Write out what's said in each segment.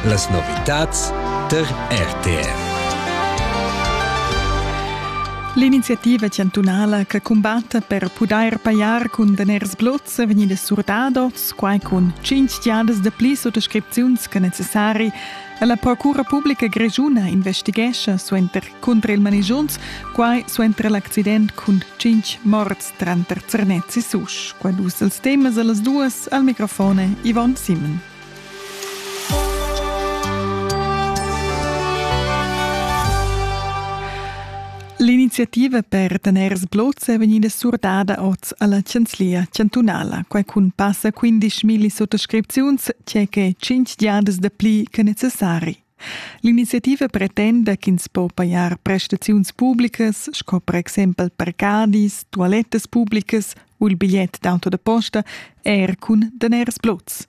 Las novitads tar RTR. L'iniziativa chantunala che cumbatta per pudair pajar cun daners blots è vegnida surdada, quai cun tschintg giadas dapli suttascripziuns che necessari. La Procura Publica Grischuna investighescha suenter, cunter il manigiunz, quai suenter l'accident cun tschintg morts. Tranter Zernez e Susch, qua dus els temas a las duas al microfone Yvonne Simon. L'iniziativa per tener sbloz è vegnida surdada oz alla Chanzlia chantunala, quai cun passa 15.000 sottoscripziuns, c'è che 5 giadas dapli che necessari. L'iniziativa pretenda ch'ins po pajar prestaziuns publicas sco per exempel parcadis, tualettas publicas u il bigliet d'auto da posta er cun daners blots.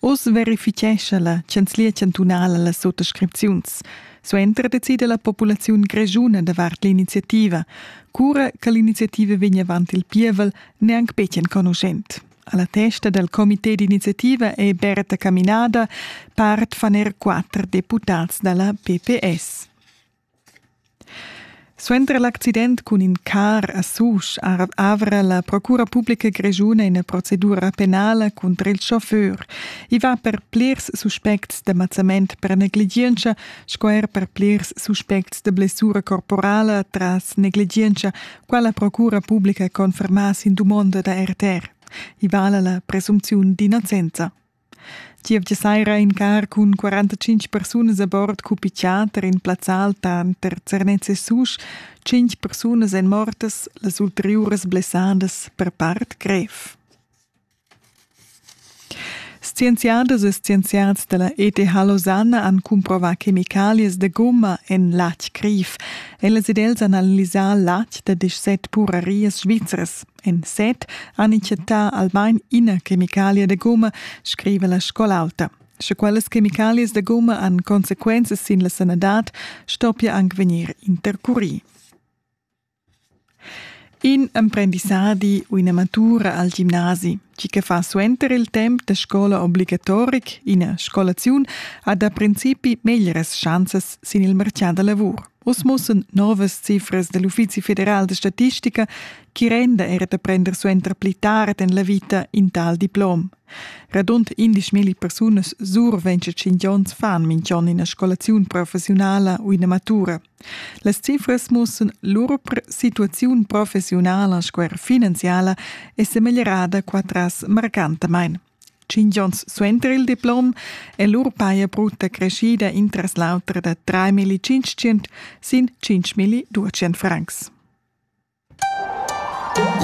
Oz verifichescha la Chanzlia chantunala las suttascripziuns. Suenter decida la populaziun grischuna davart l'iniziativa. Cura che l'iniziativa vegn avant il pievel, neanc betg enconuschent. Alla testa del comité d'iniziativa è Berta Caminada, part fan er quatter deputats dalla PPS. Suenter l'accident cun in car a Susch avra la Procura Pubblica Grischuna una procedura penale contro il chauffeur. I va per plirs suspects de mazzament per negligencia, sco er per plirs suspects de blessura corporale tras negligencia Quella procura publica conferma sin dumonda da RTR. I vala la presumpziun d'innocenza. Gievgia saira in car cun 45 persunas a bord cupicciater in plazzal tanter Zernez e Susch, 5 persunas en mortas, las ulteriuras blessadas per part grev. Scienziadas e scienziads dalla ETH Losanna han cumprovà chemicalias da gumma en latg criv. Ellas ed els han analisà latg da 17 purarias svizras. En set han chattà almain ina chemicalia da gumma, scriva la scola alta. Sche quellas chemicalias da gumma han consequenzas sin la sanadad, stoppia anc vegnir intercurì. In emprendissadi u ina matura al gimnasi, tgi che fa suenter il temp da scola obligatoric ina scolaziun, ha da principi meglras schanzas sin il martgà da lavur. Uss mussan novas cifras da l'Uffizi federal da statistica chi renda era da prender suenter pli tard en la vita in tal diplom. Radund 11.000 persunas surventsche 5 onns fan minch'on ina scolaziun professionala u ina matura. Las cifras mussan lur situaziun professiunala sco er finanziala è semeglierada qua tras marcantamain. Tschintg onns suenter il diplom è lur paja brutta creschida intras l'auter da 3.500 sin 5.200 francs.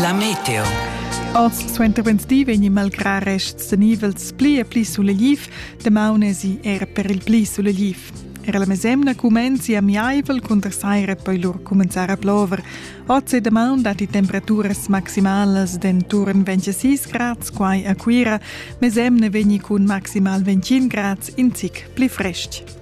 La meteo. Oz suentervenedi vegni malgrà rests tenivels pli e pli sulegliv, damaun esi era per il pli sulegliv. Era la mesemna cumenzi amiaivel cunter saira poi lur cumenzar a plover. Oz e damaun datti temperaturas maximalas d'enturn 26 grads quai a Cuira, mesemna vegni cun maximal 25 grads in zic pli frestg.